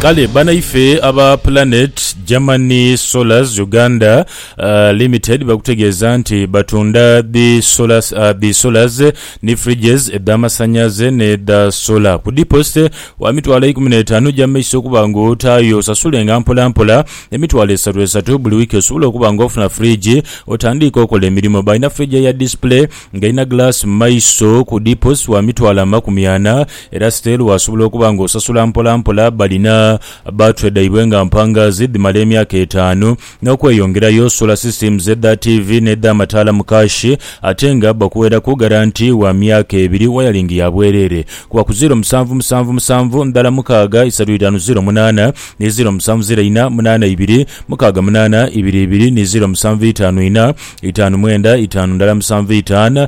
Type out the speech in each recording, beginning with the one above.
Kale banaife aba Planet Germany Solars Uganda Limited bakutegeeza nti batunda dhi Solars ni Fridges edh'amasanhalaze n'edha Solar ku diposite wa mitwalo eikumi n'etaanu egy'amaiso okuba nga otaayo osasulenga mpolampola emitwalo esatu esatu buli wiiki osobole okuba nga ofuna Fridge otandiike okola emirimo. Balina Fridge eya Display nga erina Glass mu maiso ku diposite wa mitwalo amakumi ana Era Siteli waasobola okuba ng'osasula mpola mpola balina battery dhaibwe nga mpangaazi dhimala emyaka etaanu. N'okweyongerayo, solar systems edha tiivi n'edh'amataala mu kaashi ate nga bakuweeraku garanti wa myaka ebiri, wayalingi ya bwereere kuba ku ziiro musanvu musanvu musanvu ndhala mukaaga isatu itaanu ziiro munaana ni ziiro musanvu ziiro ina munaana ibiri mukaaga munaana ibiri ibiri ni ziiro musanvu itaanu ina itaanu mwenda itaanu ndhala musanvu itaanu.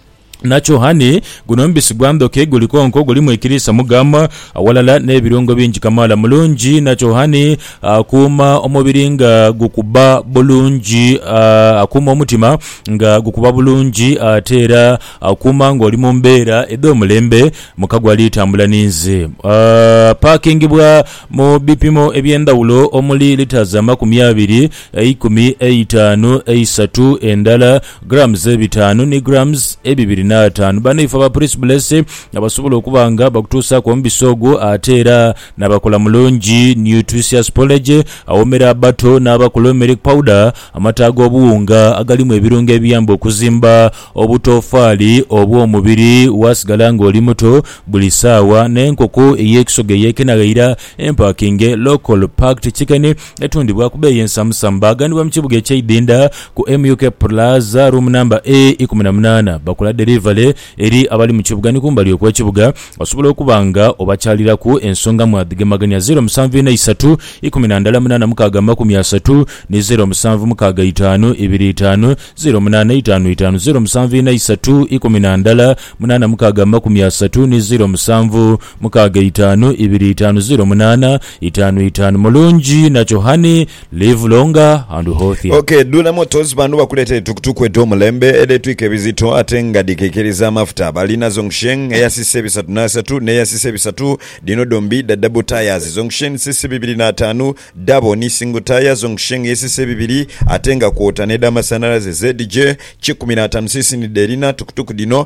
Nakyo hhani, guno mubisi gwa ndhoki, guli konko, gulimu ekiriisa mu gum, awalala n'ebirungo bingi kamaala. Mulungi nakyo hhani, akuuma omubiri nga gukuba bulungi, akuuma omutima nga gukuba bulungi ate era akuuma ng'oli mu mbeera edh'omulembe. Mukago ali tambula ni nze. Apaakingibwa mu bipimo eby'endhawulo omuli litres amakumi abiri. eikumi, eitaanu, eisatu, endala, grams ebitaanu, ni grams ebibiri n'ataanu. Banaifo aba Prince Blessy abasobola okuba nga bakutuusaaku omubisi ogwo ate era n'abakola mulungi nutritious porridge awoomera abato n'abakulu, milk powder, amata ag'obuwunga agalimu ebirungo ebiyamba okuzimba obutoofaali obw'omubiri waasigala ng'oli muto buli saawa, n'enkoko ey'ekisoga eyekenaghaira, empakinge, local packed chicken. Etundhibwa ku beeyi ensamusamu. Baaghanibwa mu kibuga eky'eidhindha ku MUK Plaza, room number E ikumi na munaana. Bakola derivale eri abali mu kibuga ni kumbali okw'ekibuga. Osobola okuba nga obakyaliraku ensonga mwadhigemagania, zeero musanvu ina isatu, ikumi na ndala munaana mukaaga amakumi asatu ni zeero musanvu mukaaga itaanu ibiri itaanu zeero munaana itaanu itaanu, zeero musanvu ina isatu, ikumi na ndala munaana mukaaga amakumi asatu ni zeero musanvu. Mukaaga itaanu ibiri itaanu ziro munaana itaanu itaanu Mulungi nakyo Honey, live longer and healthy. Ok Dula Motors bano bakuletere tukutuku edhomulembe edhetwika ebizito ate nga dhikekeriza amafuta. Balina Zhongsheng eya cc bisatu n'asatu n'eya cc bisatu, dhino dhombi dha double tyres, Zhongsheng cc bibiri n'ataanu, double ni single tyre, Zhongsheng ye cc bibiri ate nga kwota n'edhamasanalaze ZJ kikumi n'ataanu cc ni dherina tukutuku dhino.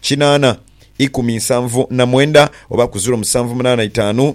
kinaana ikumi nsanvu na mwenda oba ku ziro musanvu munaana itaanu,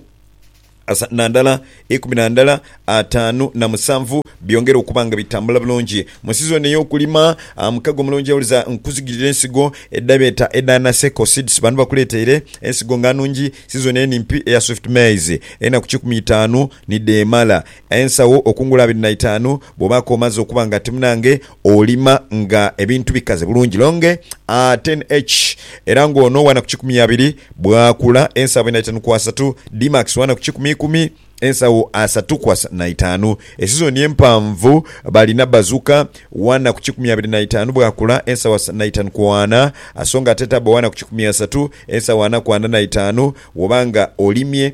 asatu na ndala, ikumi na ndala, ataanu na musanvu byongere okuba nga bitambula bulungi mu sizoni ey'okulima. Mukago mulungi awuliza nkuzigirira ensigo edhabeeta edha Naseko Seeds bano bakuleeteire ensigo nga nnungi sizoni eno empi eya Swift Maize enaku kikumi itaanu ni dheemala. Ensawo okungula abiri na itaanu bwobaako omaze okuba nga ti munange olima nga ebintu bikaze bulungi longe a ten each era nga ono wana ku kikumi abiri bwakula ensawo abiri na itaanu ku asatu Dmax wana ku kikumi ikumi ensawo asatu ku asatu na itaanu Esizoni empanvu balina Bazuka wana ku kikumi abiri na itaanu bwakula ensawo asatu na itaanu ku ana Songa Atetaba wana ku kikumi asatu ensawo ana ku ana na itaanu Woba nga olimye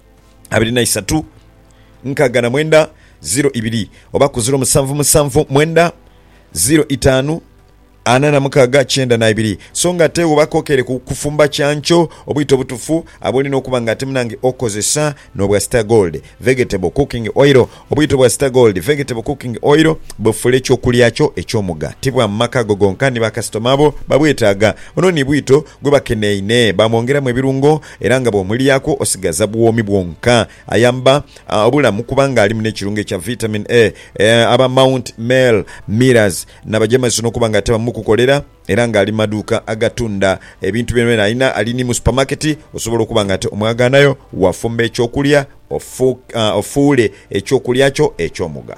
abiri na isatu nkaaga na mwenda ziro ibiri oba ku ziro musanvu musanvu mwenda ziro itaanu ana na mukaaga kyenda na ibiri so nga ate woba kokere ku kufumba kyankyo obwito obutufu abulina okuba nga ate munange okozesa nobwa star gold vegetable cooking oil obwito bwa star gold vegetable cooking oil bufula ekyokulya kyo ekyomuga ti bwa mumaka go gonka ni bakasitoma bo babwetaaga ono ni bwito gwebakeneine bamwongeramu ebirungo Era nga bw'omulyaku osigaza bwomi bwonka. Ayamba obulamu kubanga alimu n'ekirungo ekya Vitamin A. Aba Mount Mel Mirrors n'abajeemezi n'okuba nga ate bamu kukolera era nga ali mu maduuka agatunda ebintu byonabyona alina. Ali ni mu supamaketi osobola okuba nga ate omwagaanayo, waafumba eky'okulya ofuule eky'okulya kyo eky'omugha.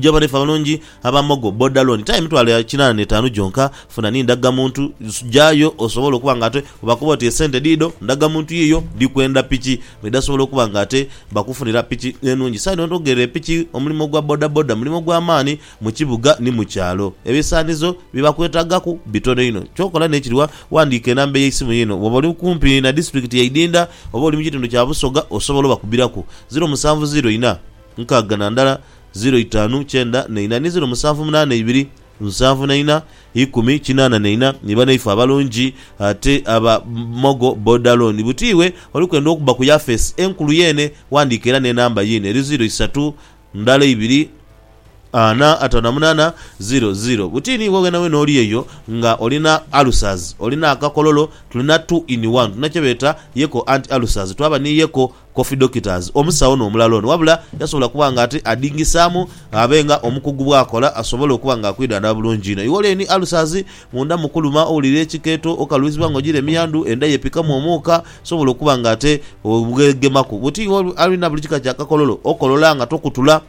Gya obona ife abalungi aba Mogo boda loan time mitwalo ya kinana n'etaanu gyonka. Funa ni ndaga muntu gyayo osobole okuba nga ate bwebakuba oti esente diido ndaga muntu yiyo ndikwenda piki mwedasobola okuba nga ate bakufunira piki enungi. Saino onogere epiki omulimo gwa boda boda mulimo gwa maani mu kibuga ni mu kyalo. Ebisaanizo bye bakwetagaku bitono inho. Kyokola n'ekiri wa wandiika enamba ey'eisimu yiino bwoba oli kumpi na disitulikiti ya Idinda oba oli mu kitundu kya Busoga osobola obakubiraku ziro musanvu ziro ina, nkaaga na ndala, ziro itaanu kyenda na ina ni ziro musanvu munaana ibiri, nsanvu na ina, ikumi kinaana na ina, ni banaife abalungi ate aba Mogo Boda Loan. Buti iwe oli kwenda okubba ku yafeesi enkulu yeene, wandiika era n'enamba yiino eri ziro isatu ndala ibiri, ana ataano na munaana, ziro ziro. Buti ni iwe wenaweena oli eyo nga olina ulcers, olina akakololo, tulina two in one. Tulina kye beeta Yeko Anti Ulcers. Twaba ni Yeko Coffee Doctors, omusawo n'omulala ono wabula yasobola kuba nga ate adhingisaamu abe nga omukugu bw'akola asobole okuba nga akwidhandhaba bulungi inho. Iwoleni Ulcers, Munda mu kuluma, owulira ekikeeto, okalwizibwa nga ogira emiyandhu, endha y'epikamu omuuka, osobola okuba nga ate obwegemaku buti alina buli kika kya kakololo, okolola nga tokutula,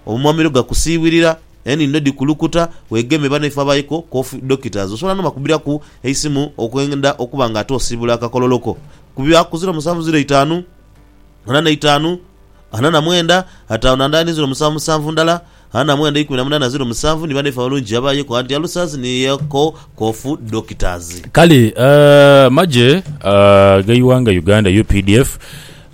omumamiro gakusiiwirira, enhindo dhikulukuta, weegemye banaife abaiko Coffee Doctors. Osobola n'obakubiraku eisimu okwenda okuba nga ate osiibula akakololo ko. ku bya ku ziro musanvu ziro itaanu, ana na itaanu, ana na mwenda, ataanu na ndala ni ziro musanvu musanvu ndala, ana na mwenda ikumi na munaana ziro musanvu ni bana ife abalungi gye babayeku anti Alusazi ni Yeko Kofu Doctors. Kale amagye ag'eighanga Uganda, updf,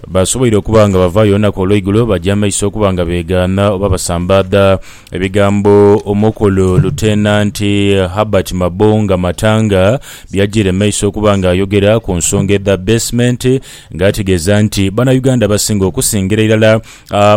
basoboire okuba nga bavaayo olunaku olweigulo baja maiso okuba nga begaana oba basambaadha Ebigambo Omukulu Lutenanti Herbert Mabunga Matanga byajjiire mu maiso okuba nga ayogera ku nsonga edha basement nga ategeeza nti Banauganda abasinga okusingira irala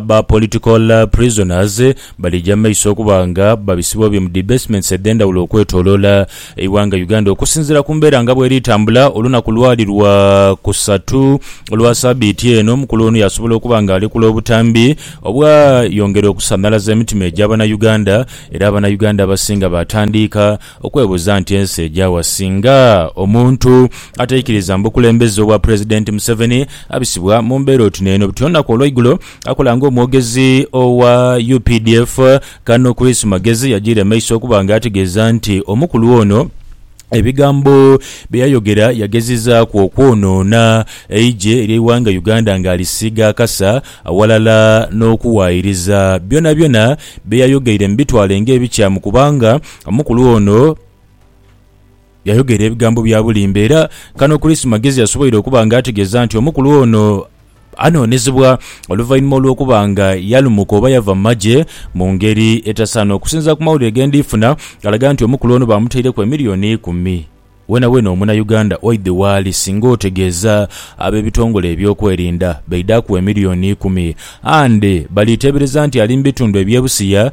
ba political prisoners balija mu maiso okuba nga babisibwa bye mu dhi basements edhendhawulo okwetoloola Eighanga Uganda okusinziira ku mbeera nga bweri tambula olunaku lwali lwa kusatu olwa sabiiti eno, omukulu ono yasobola okuba nga alekula obutambi obwa yongera okusanhalaza emitima egya bana Uganda era abana Uganda abasinga batandiika okwebuuza nti ensi egyawa singa omuntu ataikiriza mubukulembeze obwa pulezidenti Museveni abisibwa mumbeera oti neeno. Buti olunaku olweigulo akola nga omwogezi owa updf, Kano Chris Magezi yajiira emaiso okuba nga ategeeza nti omukulu ono ebigambo bye yayogera yagezizaaku okwonoona eigye ly'eighanga Uganda nga alisiiga akasa awalala n'okuwaayiriza byonabyona bye yayogeire mu bitwale ng'ebikyamu kubanga omukulu ono Yayogera ebigambo bya bulimba era kano Chris Magezi yasoboire okuba nga ategeeza nti omukulu ono anoonezebwa oluvainhuma olw'okuba nga yalumuka oba yava mu magye mu ngeri etasaana. Okusinzira ku mawulire ge ndi funa galaga nti omukulu ono baamutaireku emiliyoni ikumi. Weenaweena omunauganda oidhe waali singa otegeeza ab'ebitongole eby'okwerinda baidhe akuwa emiliyoni ikumi and baliiteebereza nti ali mu bitundu eby'e Busia,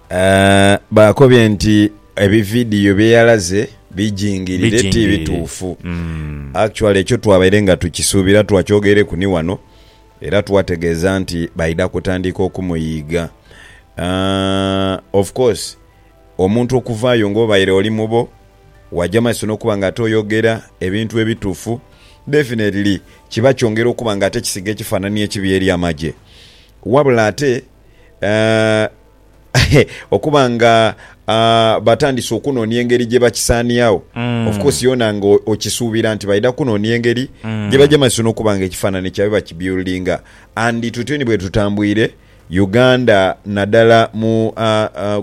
Baakobye nti ebividiyo bye yalaze bijingirire ti bituufu. Actually ekyo twabaire nga tukisuubira twakyogeireku ni wano era twategeeza nti baidha kutandika okumuyiiga. Of course omuntu okuvaayo nga obaire oli mubo waja mu maiso n'okuba nga ate oyogera ebintu ebituufu definitely kiba kyongera okuba nga ate kisiiga ekifaananhi ekibi eri amagye. Wabula ate okuba nga batandise okunoonia engeri gye bakisaaniagho. Of course yona nga okisuubira nti baidha kunoonia engeri gye bagyemazisa n'okuba nga ekifaanane kyabwe bakibuildinga and tutyo ni bwe tutambwire Uganda nadala mu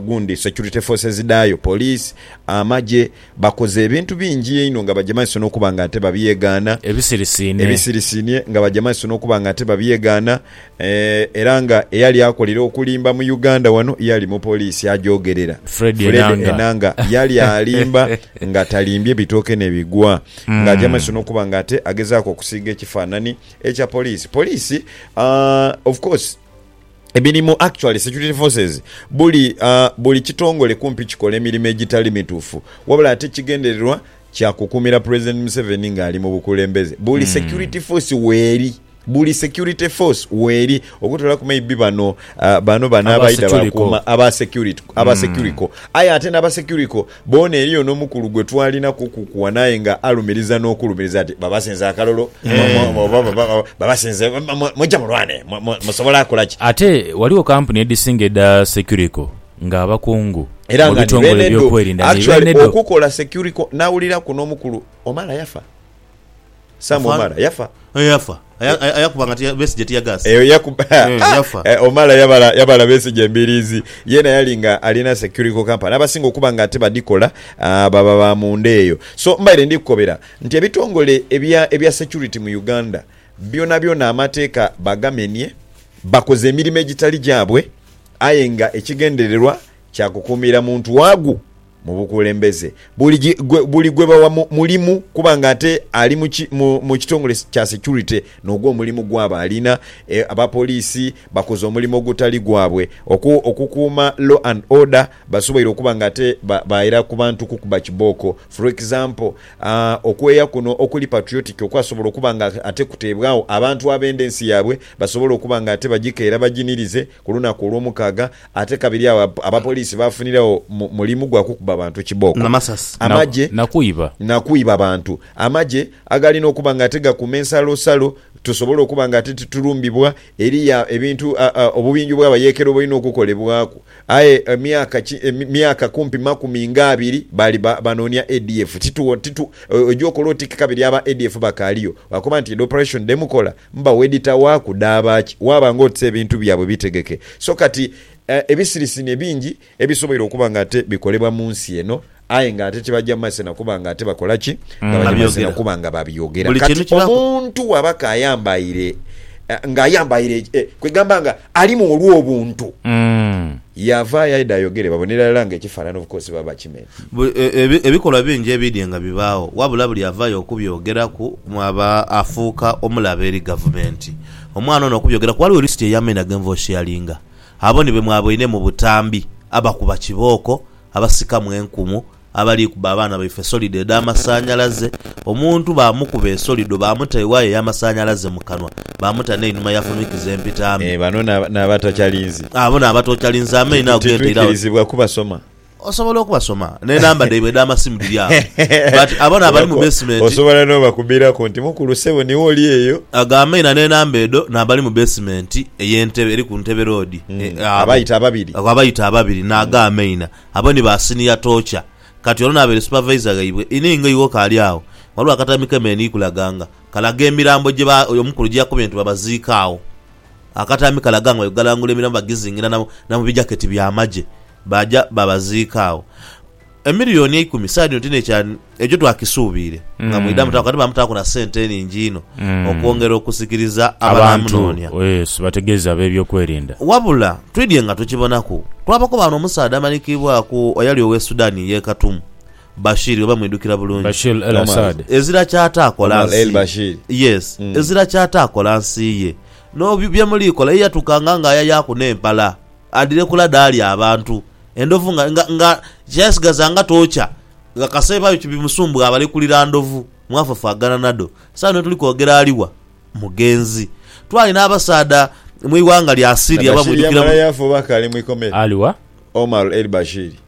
gundi security forces dhaayo, police, amagye Bakoze ebintu bingi einho nga baja maiso n'okuba nga ate babyegaana. Ebisirisiine. Ebisirisiine nga baja maiso n'okuba nga ate babyegaana era nga eyali akolera okulimba mu Uganda wano yali mupoliisi agyogerera, Fred Enanga yali alimba nga talimbye bitooke ne bigwa ng'aja maiso n'okuba nga ate agezaaku okusiiga ekifaanani ekya poliisi. Poliisi, of course, Emirimu, Actually, security forces buli buli kitongole kumpi kikola emirimo egitali mituufu wabula ate ekigendererwa kya kukuumira Pulezidenti Museveni ng'ali mu bukulembeze. Buli security force weeri, buli security force weeri okutoolaku maybe bano bano bano Aba abaidha securiko. baakuuma aba security aba securico aye ate n'aba securico Boona, eriyo n'omukulu gwe twalinaku okukuwana aye nga alumiriza n'okulumiriza ati, Babasinza akalulu, babasinze, mujja mulwane, musobola kola ki? Ate waligho kampuni edhisinga edha Securiko nga abakungu mu bitongole eby'okwerinda ni beenedo. Actually okukola Securiko nawuliraku n'omukulu omala yafa. Sam Omara yafa. Eh yafa Aya- ayakuba nga tia- besigye tiyagaasi Eyo yaku- Eh, yafa. Eh, Omala yabala, yabala Besigye embiriizi. Yeena yali nga alina securical company abasinga okuba nga ate badhikola ah, baba ba munda eyo. So mbaire ndi kukobera nti ebitongole ebya ebya security mu Uganda byonabyona amateeka bagamenye, bakoze emirimo egitali gyabwe aye nga ekigendererwa kya kukuumira muntu waagu. Mu bukulembeze, buli gwe bawa mulimu kuba nga ate ali mu kitongole kya securite n'ogwo omulimu gwaba alina. Abapoliisi bakoze omulimu ogutali gwabwe okukuuma law and order, basoboire okuba nga ate baira ku bantu kukuba kibooko. For example, okweya kuno okuli patriotic okwasobola okuba nga ate kuteebwagho abantu abenda ensi yaabwe basobole okuba nga ate bagikeera baginirize ku lunaku Olwomukaaga. Ate kabiri agho abapoliisi baafuniragho mulimu gwa kukuba bantu kibooko, amagye, na kwiba bantu. Amagye agalina okuba nga ate gakuuma ensalosalo tusobole okuba nga ate titulumbibwa. Eriyo ebintu obubinjo bw'abayeekera obulina okukolebwaku. Aye myaka kumpi makumi nga abiri baali banoonia ADF. Oja okola oti kabiri aba ADF bakaaliyo? Baakoba nti edho Operation dhe mukola Mba wedita wa kudhaaba ki? Waaba ng'oti se ebintu byabwe bitegeke. So kati, ebisirisini ebingi ebisoboire okuba ng'ate bikolebwa mu nsi eno, aye ng'ate tibaja maze na kuba ng'ate bakola ki? Nga baja maze na kuba nga babyogera. Kati omuntu bw'aba k'ayambaire, ng'ayambaire, kwegamba nga. Alimu olw'obuntu. Yaavaayo aidha ayogere babonere irala nga ekifaanana obukoosi baba bakimenya. Buli, ebikolwa bingi ebiidye nga bibaagho wabula buli avaayo okubyogeraku aba afuuka omulabe eri Gavumenti. Omwana ono okubyogeraku ghaligho lisiti ey'amaina ge nva osheyalinga. Abo ni be mwaboine mu butambi abakuba kibooko, abasikamu enkumu, abali kuba abaana baife solido edh'amasanhalaze, omuntu baamukuba esolido baamuta ewaya ey'amasanhalaze mu kanwa, baamuta n'einhuma ya funhikiza empitaame. Bano n'abatakyalinzi. Abo n'abatokyalinzi amaino ago g'entaire agho. Titwikirizibwa kubasoma. Osobola okubasoma, n'enamba dhaibwe edh'amasimu dhiri agho. But abo n'abali mu beesimenti. Osobola n'obakubiraku nti, Mukulu, ssebo niwe oli eyo? Ago amaina n'enamba edho n'abali mu beesimenti ey'entebe eri ku ntebe loodi. Abo. Abayita ababiri. Ago abayita ababiri n'ago amaina. Abo ni ba siniya toocha. Kati, ono n'abaire supavaiza ghaibwe. Inii, nga iwe okaali agho, ghaligho akatami ke me ni kulaga nga kalaga emirambo gye ba, oyo omukulu gye yakubye nti babaziike agho. Akatami kalaga nga bwe galangula emirambo bagizingira na, na mu bijaketi by'amagye, baaja baabaziika agho. Emilioni eikumi, saidi dhino ti n'ekya. Ekyo twakisuubiire nga mwidha mutaaku ate baamutaaku na sente enhingi inho okwongera okusikiriza abanaamunoonia. Abantu, Yesu, bategeeze ab'ebyokwerinda. Wabula twidhie nga tukibonaku. Twabakoba ghano omusaadha amanhikiibwaku eyali ow'e Sudan ey'e Khartoum, Bashir oba mwidhukira bulungi. Bashir el-Assad. Ezira ky'ataakola Omar nsi ye. el-Bashir. Yes. Ezira ky'ataakola nsi ye. N'obi bye muliikola ye yatukanga ng'ayayaaku n'empala. Adhire kula dhaali abantu. Endhovu nga, nga, nga kyayasigaza nga tookya. Nga kaseeba byo kibimusumbugha abalekulira ndhovu mwafafaagana nadho. Saagho nhi wetuli kwogera ali wa? Mugenzi. Twali n'abasaadha mu ighanga lya Syria abamwidhukira mu. Ali wa? Omar el-Bashir.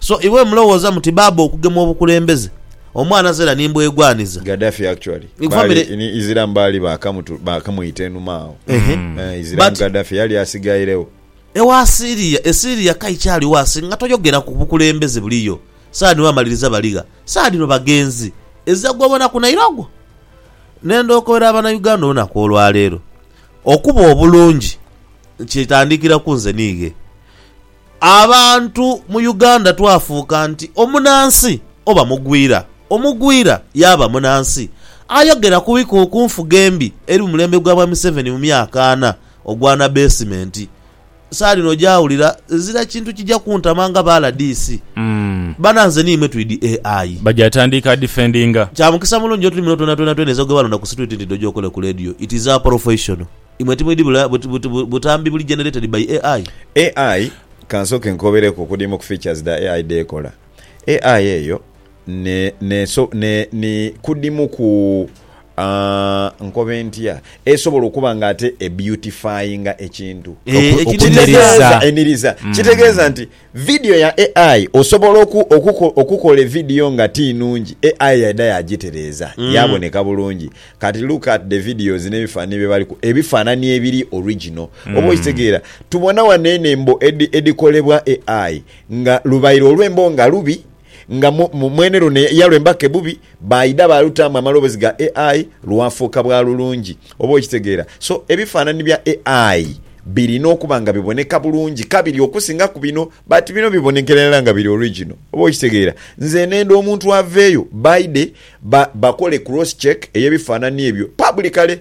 So iwe mulowoza muti baaba okugemwa obukulembeze omwana zera ni mbwegwaniza. Gaddafi actually Ni family- baali ni Isilamu baali baakamutu- baakamwita enhuma agho. Ehe. Eh, Isilamu But- Gaddafi yali asigairegho. Ewa Syria, e Syria ka ikyaligho asi nga toyogera ku bukulembeze buliyo. Saani wamaliriza baligha. Saadhino bagenzi. Ezira gwobona ku naira ogwo. Nenda okobera abana Uganda olunaku olwaleero. Okuba obulungi kitandikira ku nze niighe. Abantu mu Uganda twafuuka nti omunansi oba mugwira, omugwira yaaba munansi. Ayogera ku bikuuku ku nfuga embi eri mu mulembe gwa bwa Museveni mu myaka ana ogwa na beesimenti, saali nojaawulira ezira kintu kija kuntama nga ba rdc. Bana nze niimwe twidi e ayi. Baja atandiika adifendinga. Kya mukisa mulungi nyo tuli muno twena twena twena ize gwebalonda ku situiti nti dhoja okole ku leediyo it is a professional. Imwe timwidhi bula butambi buli generated by AI? AI kansooke nkobereku okudiima ku features dha AI dhekola. AI eyo ni kudimu ku nkobe ntya esobola okuba nga ate e beautifyinga ekintu. Okumiririza. Kitegeeza nti. Vidiyo ya AI osobola oku, oku, okukola evidiyo nga ti nungi, AI yaidha yaagitereeza yaaboneka bulungi. Kati look at the videos n'ebifaananie bye bali ku, ebifaananie ebiri original. Oba okitegeera? Tubona wano eno embo edhi, edhikolebwa AI nga lubaire olw'embo nga lubi, nga mwene luno yalwemba ke bubi, baaidha baalutaamu amaloboozi ga ai lwafuuka bwa lulungi. Oba okitegeera? So, ebifaanani bya ai birina okuba nga biboneka bulungi kabiri okusingaku bino, but bino bibonekera irala nga biri original. Oba okitegeera? Nze neenda omuntu aveeyo baaidhe bakole cross-check ey'ebifaanani ebyo publicly.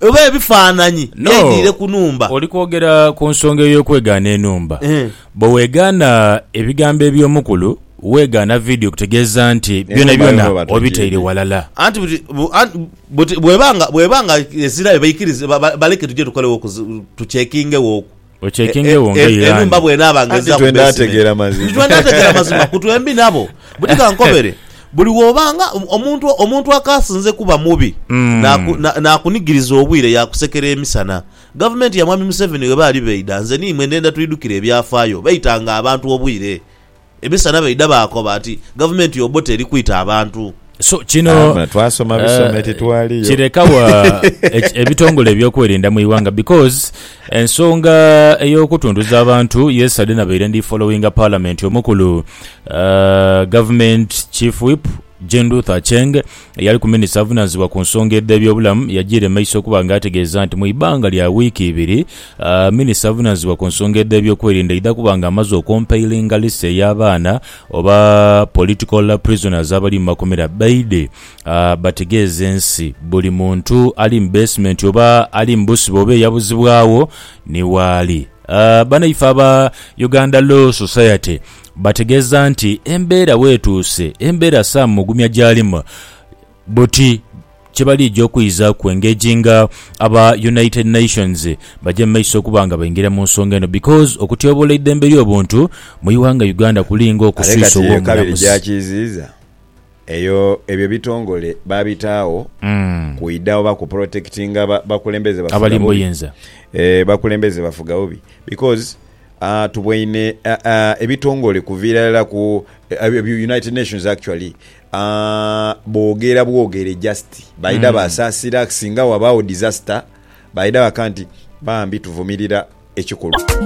Oba ebifaananyi No. byaidiire ku nhumba. Oli kwogera ku nsonga ey'okwegaana enhumba. Eeh. Bwe weegaana ebigambo eby'omukulu, weegaana vidiyo kutegeeza nti byonabyona obitaire ghalala. Anti buti bu, anti buti bw'eba nga, bw'eba nga ezirayo baikirize, ba, ba, baleke tuje tukoleghoku, tuchekingeghoku. Okyekengegho nga Iran. Enhumba bw'enaaba nga ezaaku beesime. Anti twena ategeera mazima. Nti twena ategeera mazima ku twembi nabo. Buti ka nkobere, buli w'oba nga omuntu, omuntu akaasinze kuba mubi, naakunigiriza obwire yaakusekera emisana. Gavumenti ya Mwami Museveni bw'eba ali baidha, nze ni imwe ndhenda twidhukire ebyafaayo, baitanga abantu obwire. Emisana baidha baakoba nti Gavumenti y'Obote eri kwita abantu. So kino eh, kireka wa ebitongole ebyokwerinda mu iwanga because ensonga eyokutunduza abantu yesterday nabaire ndi followinga parliament omukulu uh, government chief whip Jean Ruth Aceng, eyaliku minisita avunanizibwa ku nsonga edh'ebyobulamu yajiire mu maiso okuba nga ategeeza nti mu ibanga lya wiiki ibiri, minisita avunanizibwa ku nsonga edh'ebyokwerinda aidha kuba nga amaze okompailinga list ey'abaana oba political prisoners abali mu makomera baidhe bategeeze ensi buli muntu ali mu basement oba ali mu busibe oba eyabuzibwagho ni waali. Banaife aba Uganda Law Society Bategeeza nti embeera bwetuuse, embeera Sam Mugumya gy'alimu buti kye baliija okwizaaku engage nga aba United Nations baja mu maiso okuba nga baingira mu nsonga eno because okutyobola eidembe ly'obuntu mu ighanga Uganda kuli nga Ate okuswisa kati eyo kabiri ow'omulamuzi. gyakiiziiza eyo ebyo ebitongole baabitaagho kwidha oba ku protectinga ba- bakulembeze bafuga Abali mu bubi. buyinza. Eh, bakulembeze bafuga bubi because A Tuboine a a ebitongole kuviira irala ku a United Nations actually a boogera bwogere just baidha baasaasira singa wabaagho disaster baidha baka nti bambi tuvumirira ekikolwa.